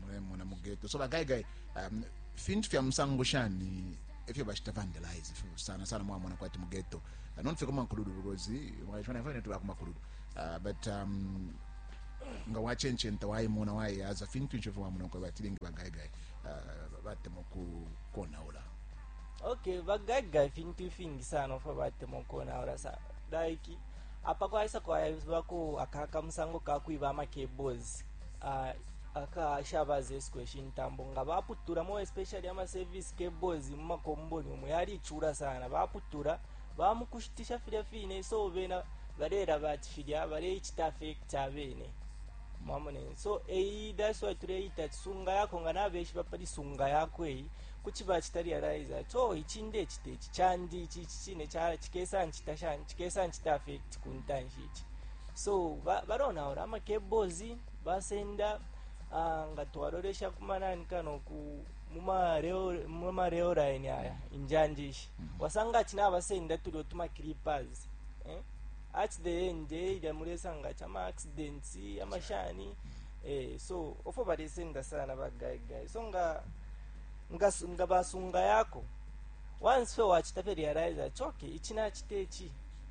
mulemona mu ghetto so bagaigai um, fintu fya musango shani efyo bashita vandalize efyo sana sana mwamona kwati mu ghetto uh, nonfe ku mankuludu because mwashona fine tuba ku mankuludu uh, but um, nga wachencenta wayimona wayiyaza fintu ncho efyo wamona kwa batilingi bagaigai uh, batema kukonaula okay bagaiga ifintu ifingi sana ofa batema ukonaula sa like apa kwaisa kwavako aka kamusango kakwiba amacables aka shabaza isiko ishi ntambo nga baputula mo especially ama service cables mu makomboni umu yalichula sana baputula bamukushitisha filya fine so bena balela bati filya baleichita affect abene mwamone so eyi that's why tuleita ati sunga yako nga nabeshiba pali sunga yako eyi kuti bachita realize ati oh ichi ndechita ichi chandi ichi ichi chine cha chikesa nchita shani chikesa nchita affect kuntanshi ichi so balonaula ba ama cables basenda uh, nga twalolesha kumanani kano ku muma rail line aya injanje ishi mm -hmm. wasanga ati nabasenda tulio tuma creepers eh? at the end eh, ilya mulesanga ati ama accidents amashani mm -hmm. eh, so ofo balisenda sana bagaigai so nga nga, nga basunga yako once fe wachita fe realize ati okay ichi nachita ichi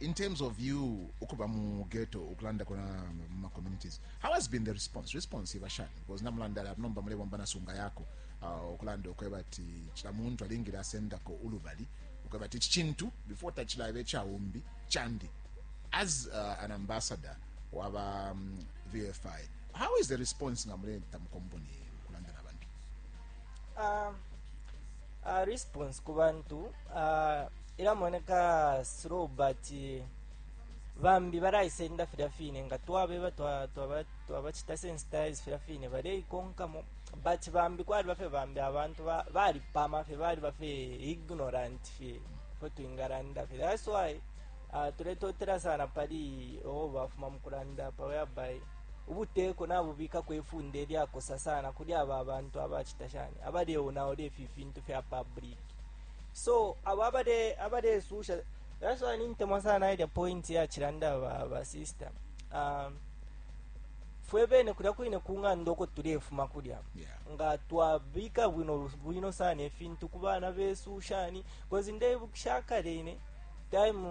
in terms of you ukuba mu ghetto ukulanda kona mu communities how has been the response response iba shani because namulanda la nomba mulebomba na sunga yako uh, ukulanda ukweba ati kila muntu alingile asendako ulubali ukweba ati chintu before tachilabe cha umbi chandi as uh, an ambassador waba um, VFI how is the response ngamuleta mu company ukulanda na bantu uh, uh, response kubantu uh, ilamoneka slow but bambi balaisenda filya fine nga twabeba twabacita sensitize filya fine baleikonkamo but bambi kwali bafe bambi abantu balipama fye bali bafe ignorant fye fo twingalanda fye that's why uh, tuletotela sana pali oo bafuma mukulanda pa whereby ubuteko nabubikako ifunde lyakosa sana kuli aba abantu abacita shani abaleonaola ifi fintu fya public so abo abale abalesusha that's why nintemwa sana ilya point yachilanda ba, ba sister um, fwe bene kulya kwine ku ng'anda uko tulefuma kulya Yeah. nga twabika bwino bwino sana ifintu ku bana besu shani kozi ndebukisha kale ine time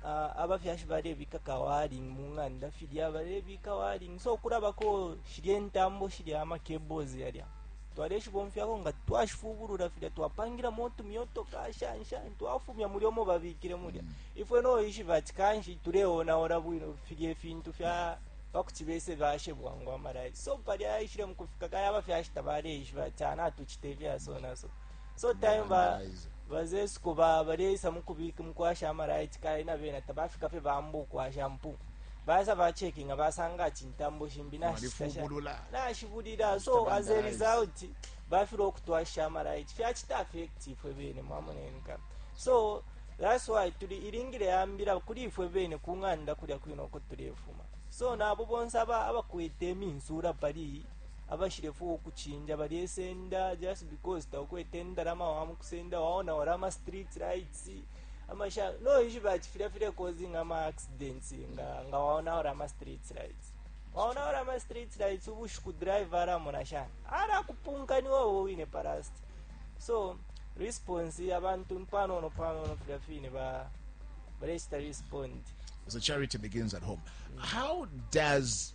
uh, abafyashi balebika kawaling mu ng'anda filya balebika waling so kulabako shilya entambo shilya amacables yalya Twaleshibomfyako nga twashifubulula filya twapangilamo utumyotoka, shani shani, twafumya mulya umo babikile mulya. Mm. Ifwe no ishiba ati kanshi tuleonaula bwino filya ifintu fya pa kuti bese bashe bwangu amalaiti. So palya yaishile mu kufika kale abafyashi tabaleishiba ati ah, natucita ifyasonaso. so time ba bazesuko ba baleisa mukubika mukwasha amaraiti kale na bena tabafika fye bamba ukwasha mpu basa bacekinga basanga ati ntambo shimbi Walifubulula. nashibulila so Mr. as a Bandaraisi. result bafile okutwasha amaraiti fyacita affect ifwe bene mwamonenka so that's why tuli ilingile yambila kuli ifwe bene ku ng'anda kulya kwino uko tulefuma so nabo bonse aba abakwete iminsula pali Abashilefwaya ukuchinja balyesenda just because taukwete indalama wamukusenda waonaura ama street lights ama sha no ishi bachi filya file causing ama accidents nga nga waonaura ama street lights waonaura ama street lights ubushiku driver aramona shani arakupunka ni wowe wine parasti so response abantu mpanono panono filya fine ba barechita respond So charity begins at home. How does